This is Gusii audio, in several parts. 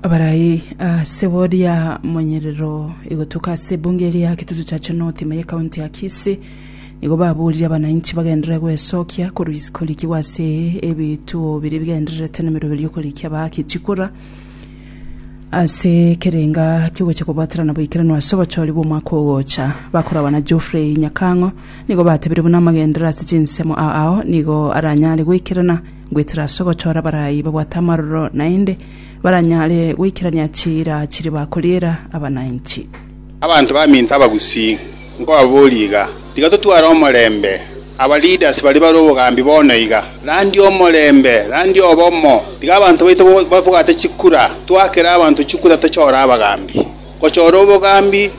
Abarai ase boria monyerero igotuka ase ebunge eria Kitutu Chache North ime y'Ekaunti ya Kisii nigo baborire abanainchi bagenderere gwesokia koruis- korikigwa ase ebituo biria bigendererete nemeroberio y'okoriki abaake chikura ase ekerenga ki'ogocha kobwaterana boikeranu ase obochori bw'omwaka ogocha. Bakorabana Geoffrey Nyakang'o nigo batebire buna amagenderero ase chinsemo a- ao nigo aranyare goikerana Goetera ase ogochora abarai babwate amaroro naende baranyare goikerania chiira chiria bakoriera abananchi. Abanto baminto abagusii, nkobaboria iga, tiga totware omorembe. Aba leaders baria bare obogambi bono iga, randia omorembe, randia obomo, tiga abanto baito babwate chikura, twakere abanto chikura tochore abagambi. Gochora obogambi.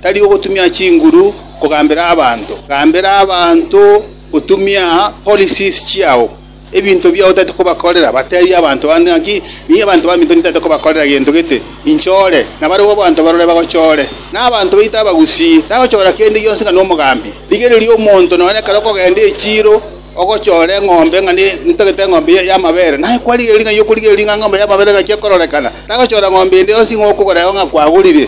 tari ogotumia chinguru kogambera abanto, gambera abanto gotumia policies chiao. Ebinto biao tari kobakorera, bateebie abanto bande ng'aki, Nigo abanto baminto nintagete kobakorera gento gete, inchore, na barabwo abanto barore bagochore. Na abanto baito abagusii tagochora kende gionsi ng'a nomogambi. Rigereria omonto nonye ekero okogenda echiiro ogochora eng'ombe ng'a ne- nintagete eng'ombe ya- y'amabere, naye kwarigereria ng'a eye okorigereria ng'a eng'ombe y'amabere engaki ekororekana, tagochora ng'ombe ende yonsi ng'a okogora eo ng'a kwagorire.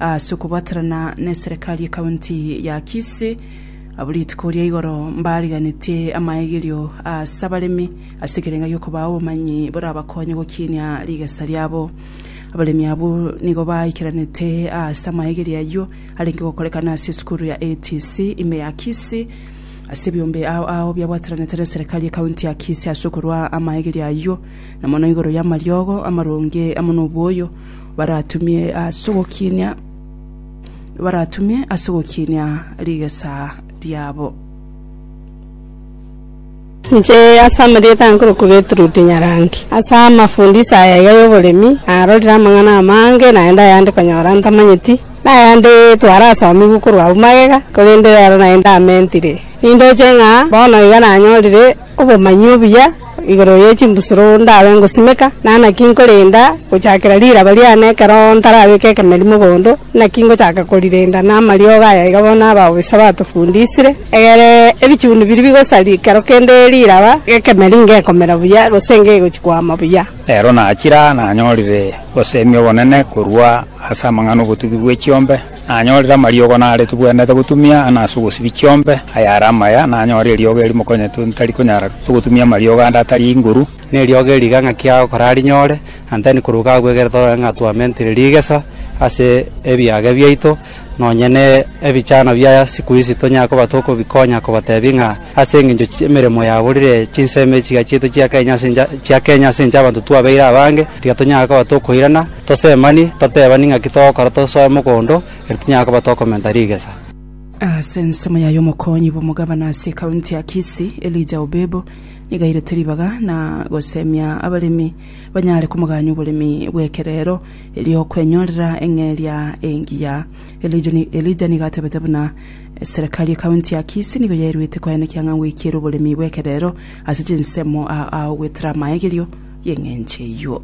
Ase okobaterana neserekari ekaunti ya Kisii, abwo rituko ria igoro mbariganetie amaegerio ase abaremi ase ekerenga gi'okobaa obomanyi borabakonye gokinia rigesa riabo. Abaremi abwo nigo baikeranete ase amaegerio ayio arenge gokorekana ase esukuru ya ATC ime ya Kisii ase ebiombe ao ao biabwateranete neserekari ekaunti ya Kisii ase okorua amaegerio ayio na mono igoro yamariogo amaronge amo noboyo baratumie as'ogokinia baratumie as'ogokinia rigesa riabo. Inche ase amarieta aye nkorokwa Gertrude Nyarangi. Ase amafundisio aya iga y'oboremi, narorire amang'ana amange naende ayande konyora ntamanyeti, na ayande twarasomigwe korwa abwo magega, korende rero naye ndamentire. Nindoche ng'a bono iga nanyorire. Obomanyi obuya igoro ye chimbusuro ndabe ngosimeka, na naki nkorenda gochakera riraba riane ekero ntarabeka ekemerimo bondo, naki ngochaka korirenda namariogo aya iga bono abao b'Esabato fundisire, egere ebichuni biria bigosari kero kende riraba, gekemeri ngekomera buya, gose ngegochi koama buya. Rero nachira nanyorire oboseemi obonene korwa ase amang'ana 'obotugi bwe chiombe. Nanyorire amariogo nare tibwenerete gotumia, na ase obosibie chiombe ayare amaya, nanyorire eriogo erimokonyetu ntari konyara togotumia amariogo ande atari inguru. Ne eriogo eri iga ng'aki aa okorarinyore, and then korwa iga agwo egere torore ng'a twamentire rigesa ase ebiage biaito, nonye ne ebichano bia siku ici tonyare koba tokobikonya kobatebia ng'a Ase engencho y'emeremo yabo rire chinsemo echi chiachiete chia Kenya ase encha chia Kenya ase encha y'abanto twabeire abange, tiga tonyare koba tokoirana, tosemani, totebani ng'aki togokora tosoe mogondo, erio tinyare koba tokomenta rigesa. Ase ensemo yaye omokonyi bw'omogabana ase ekaunti ya Kisii, Elijah Obebo, nigo airete ribaga na gosemia abaremi banyare komogania oboremi bw'ekerero erio okwenyorera eng'eria engiya. Elijah nigo atebete buna, Eserekari y'Ekaunti ya Kisii nigo yaeruete koa nekiang'a gwekiera oboremi bw'ekerero ase chinsemo aa ao gwetera amaegerio y'eng'encho eyio.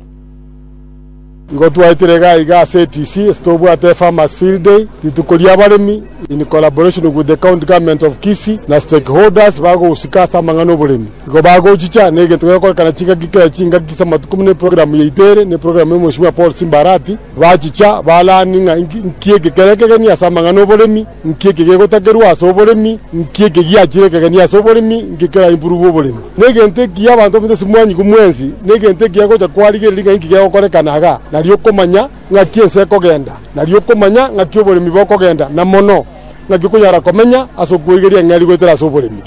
Nigo twaetire iga iga ase ETC ase tobwate Farmers Field Day, Rituko ri'Abaremi, in collaboration with the County Government of Kisii na stakeholders bagosika ase amang'ana oboremi. Nigo bagochicha negento gegokorekana chingaki kera chingaki ase amatuko buna eprogramu yaito ere na eprogramu y'Omoheshimiwa Paul Simba Arati, Bachicha, balaani ng'a inki eke kere ekegeni ase amang'ana 'oboremi, inki eke gegotakerwa ase oboremi, inki eke giachire ekegeni ase oboremi, inki kera improve oboremi. Negento ekiya abanto baminto ase mwanyiku mwensi, negento ekiya gocha kwarigereria ng'a inki gegokorekana iga, nario okomanya ng'aki ense ekogenda, nario okomanya ng'aki oboremi bokogenda, na mono, ng'aki okonyara komenya ase okweigeria eng'eria goetera ase oboremi.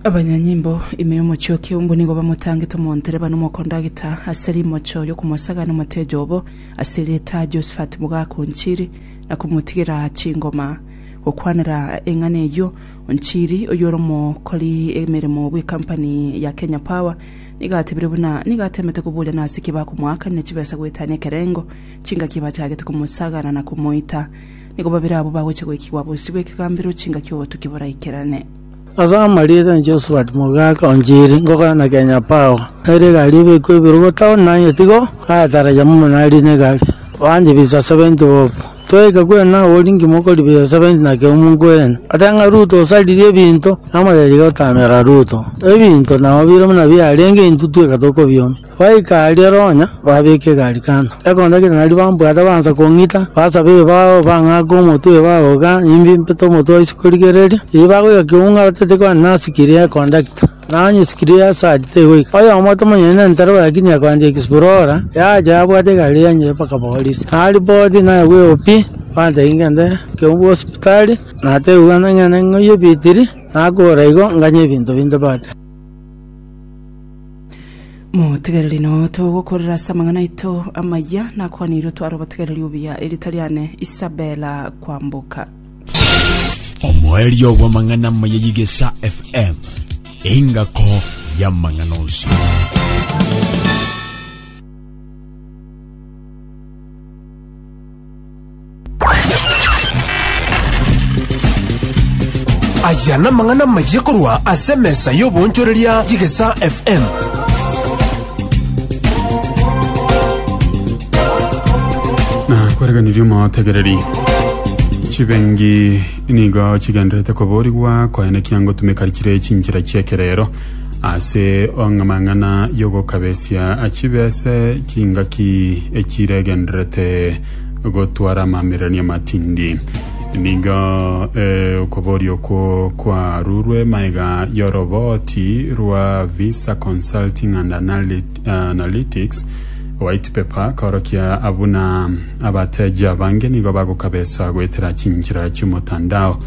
Abanyanyimbo ime y'omochie o mbwe nigo bamotangete omoontereba na omokondagita ase rimocho ri'okomosagana omotejo obo ase erieta Josephat Mogaka o Nchiri na komotigera chingoma. Gokwanera eng'ana eyio, Onchiri, oyio ore omokori emeremo bw'ekampani ya Kenya Power, nigo atebire buna nigo atemete koboria nase ki bakomoakanera chibesa goetania ekerengo, chingaki bachagete komosagana na komoita. Nigo babere abwo bagochia goikigwa bosio bw'ekegambero chingaki obotuki boraikerane. Ase amarieta a Josephat mogaaka o Njiri ngokora na Kenya Power, ere egari ebekwe ibere bo town na aye tigo agataragia momo nari ne egari. Bande bisa 70 bob. Twegeka kwena awo ori ngima okori bisa 70 naki omu nkwena. Ate ng'a Ruto osaririe ebinto, namotebi tiga otamera Ruto. Ebinto nao bire buna biarenge intwe tweka tokobiomia. Goika aria ronya babeke egari kando, ekonda kera naria bambwate baansa kong'ita, basabe ebao, bang'ake omotwe ebao iga imbe impete omotwe o isiko rigereria. Erio bagoika keunga batete kwane na sikiri ya kondakta, na onye sikiri ya sadi tegoika. Oyomo tomanyeti nentaro lakini akoandia explora, yacha yabwata egari yanyia mpaka Boris. Naripoti naye bwe OP, bantebia ngende keungu hospitali, natebiwa ng'ende ng'oiye ebitiri, nakora igo nganye ebinto binde bande. motegereri nao togokorera ase amang'ana aito amaya nakwanirwe tware obotegereri obuya erita riane isabela kwamboka omoerio bw'amang'ana amaya y'igesa fm engako y'amang'ana onsi Aya namang'ana amayia korwa ase emesa y'oboonchoreria y'Egesaa FM. na kwereganirie omotegereri chibengi nigo chigenderete koborigwa koenekia ngotumeka chire chinchera chi'ekerero Ase amang'ana y'ogokabesia achibe ase chingaki echiregenderete gotwara amamererania amatindi. Nigo eh, okoboria okwo kwarurwe maega y'oroboti rwa Visa Consulting and Analytics Analytics, White Paper, korokia abuna abateji abange nigo bagokabesa goetera chinchera chi'omotandao.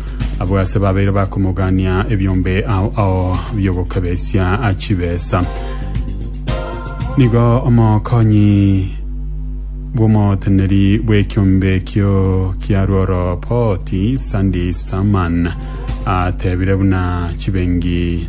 Abwo ase babeire bakomogania ebiombe ao ao biogokabesia chibesa. Nigo omokonyi bw'omoteneri bw'ekiombe ekio kia Rworo Poti, Sandy Saman, atebire buna chibengi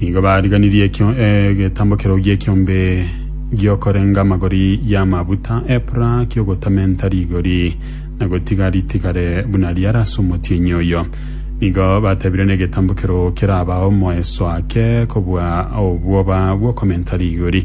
Nigo bariganirie ekio egetambo keroo gi'ekiombe gi'okorenga amagori y'amaguta, epura ki'ogotamenta rigori, na gotiga ritigare buna riare ase omotienyi oyo. Nigo batebire negetambo keroo keraba omoeso ake kobua obwoba bw'okomenta rigori.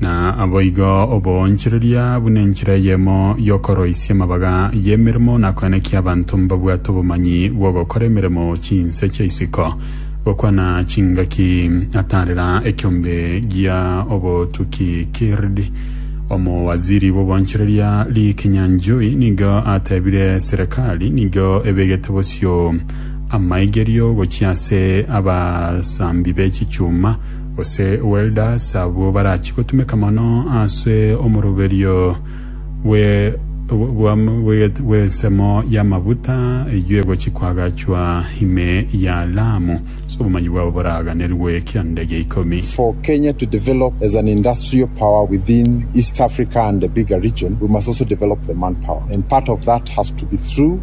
Na aboigo oboonchoreria buna enchera eyemo y'okoroisia amabaga y'emeremo na koenekia abanto mbabwate obomanyi bw'ogokora emeremo chinse chia isiko, gokwana chingaki ataarera ekiombe gia obotuki kird. Omowaziri bw'oboonchoreria Lee Kinyanjui nigo ateebire serekari nigo ebegete bosio amaigerio gochia ase abasambi be chichuma, Gose welders abwo barachie gotumeka mono ase omoroberio bw'ensemo y'amaguta eyio egochia koagachwa ime ya Lamu, ase obomanyi bwabo boraganerwe ekianda gia ikomi. For Kenya to develop as an industrial power within East Africa and the bigger region, we must also develop the manpower and part of that has to be through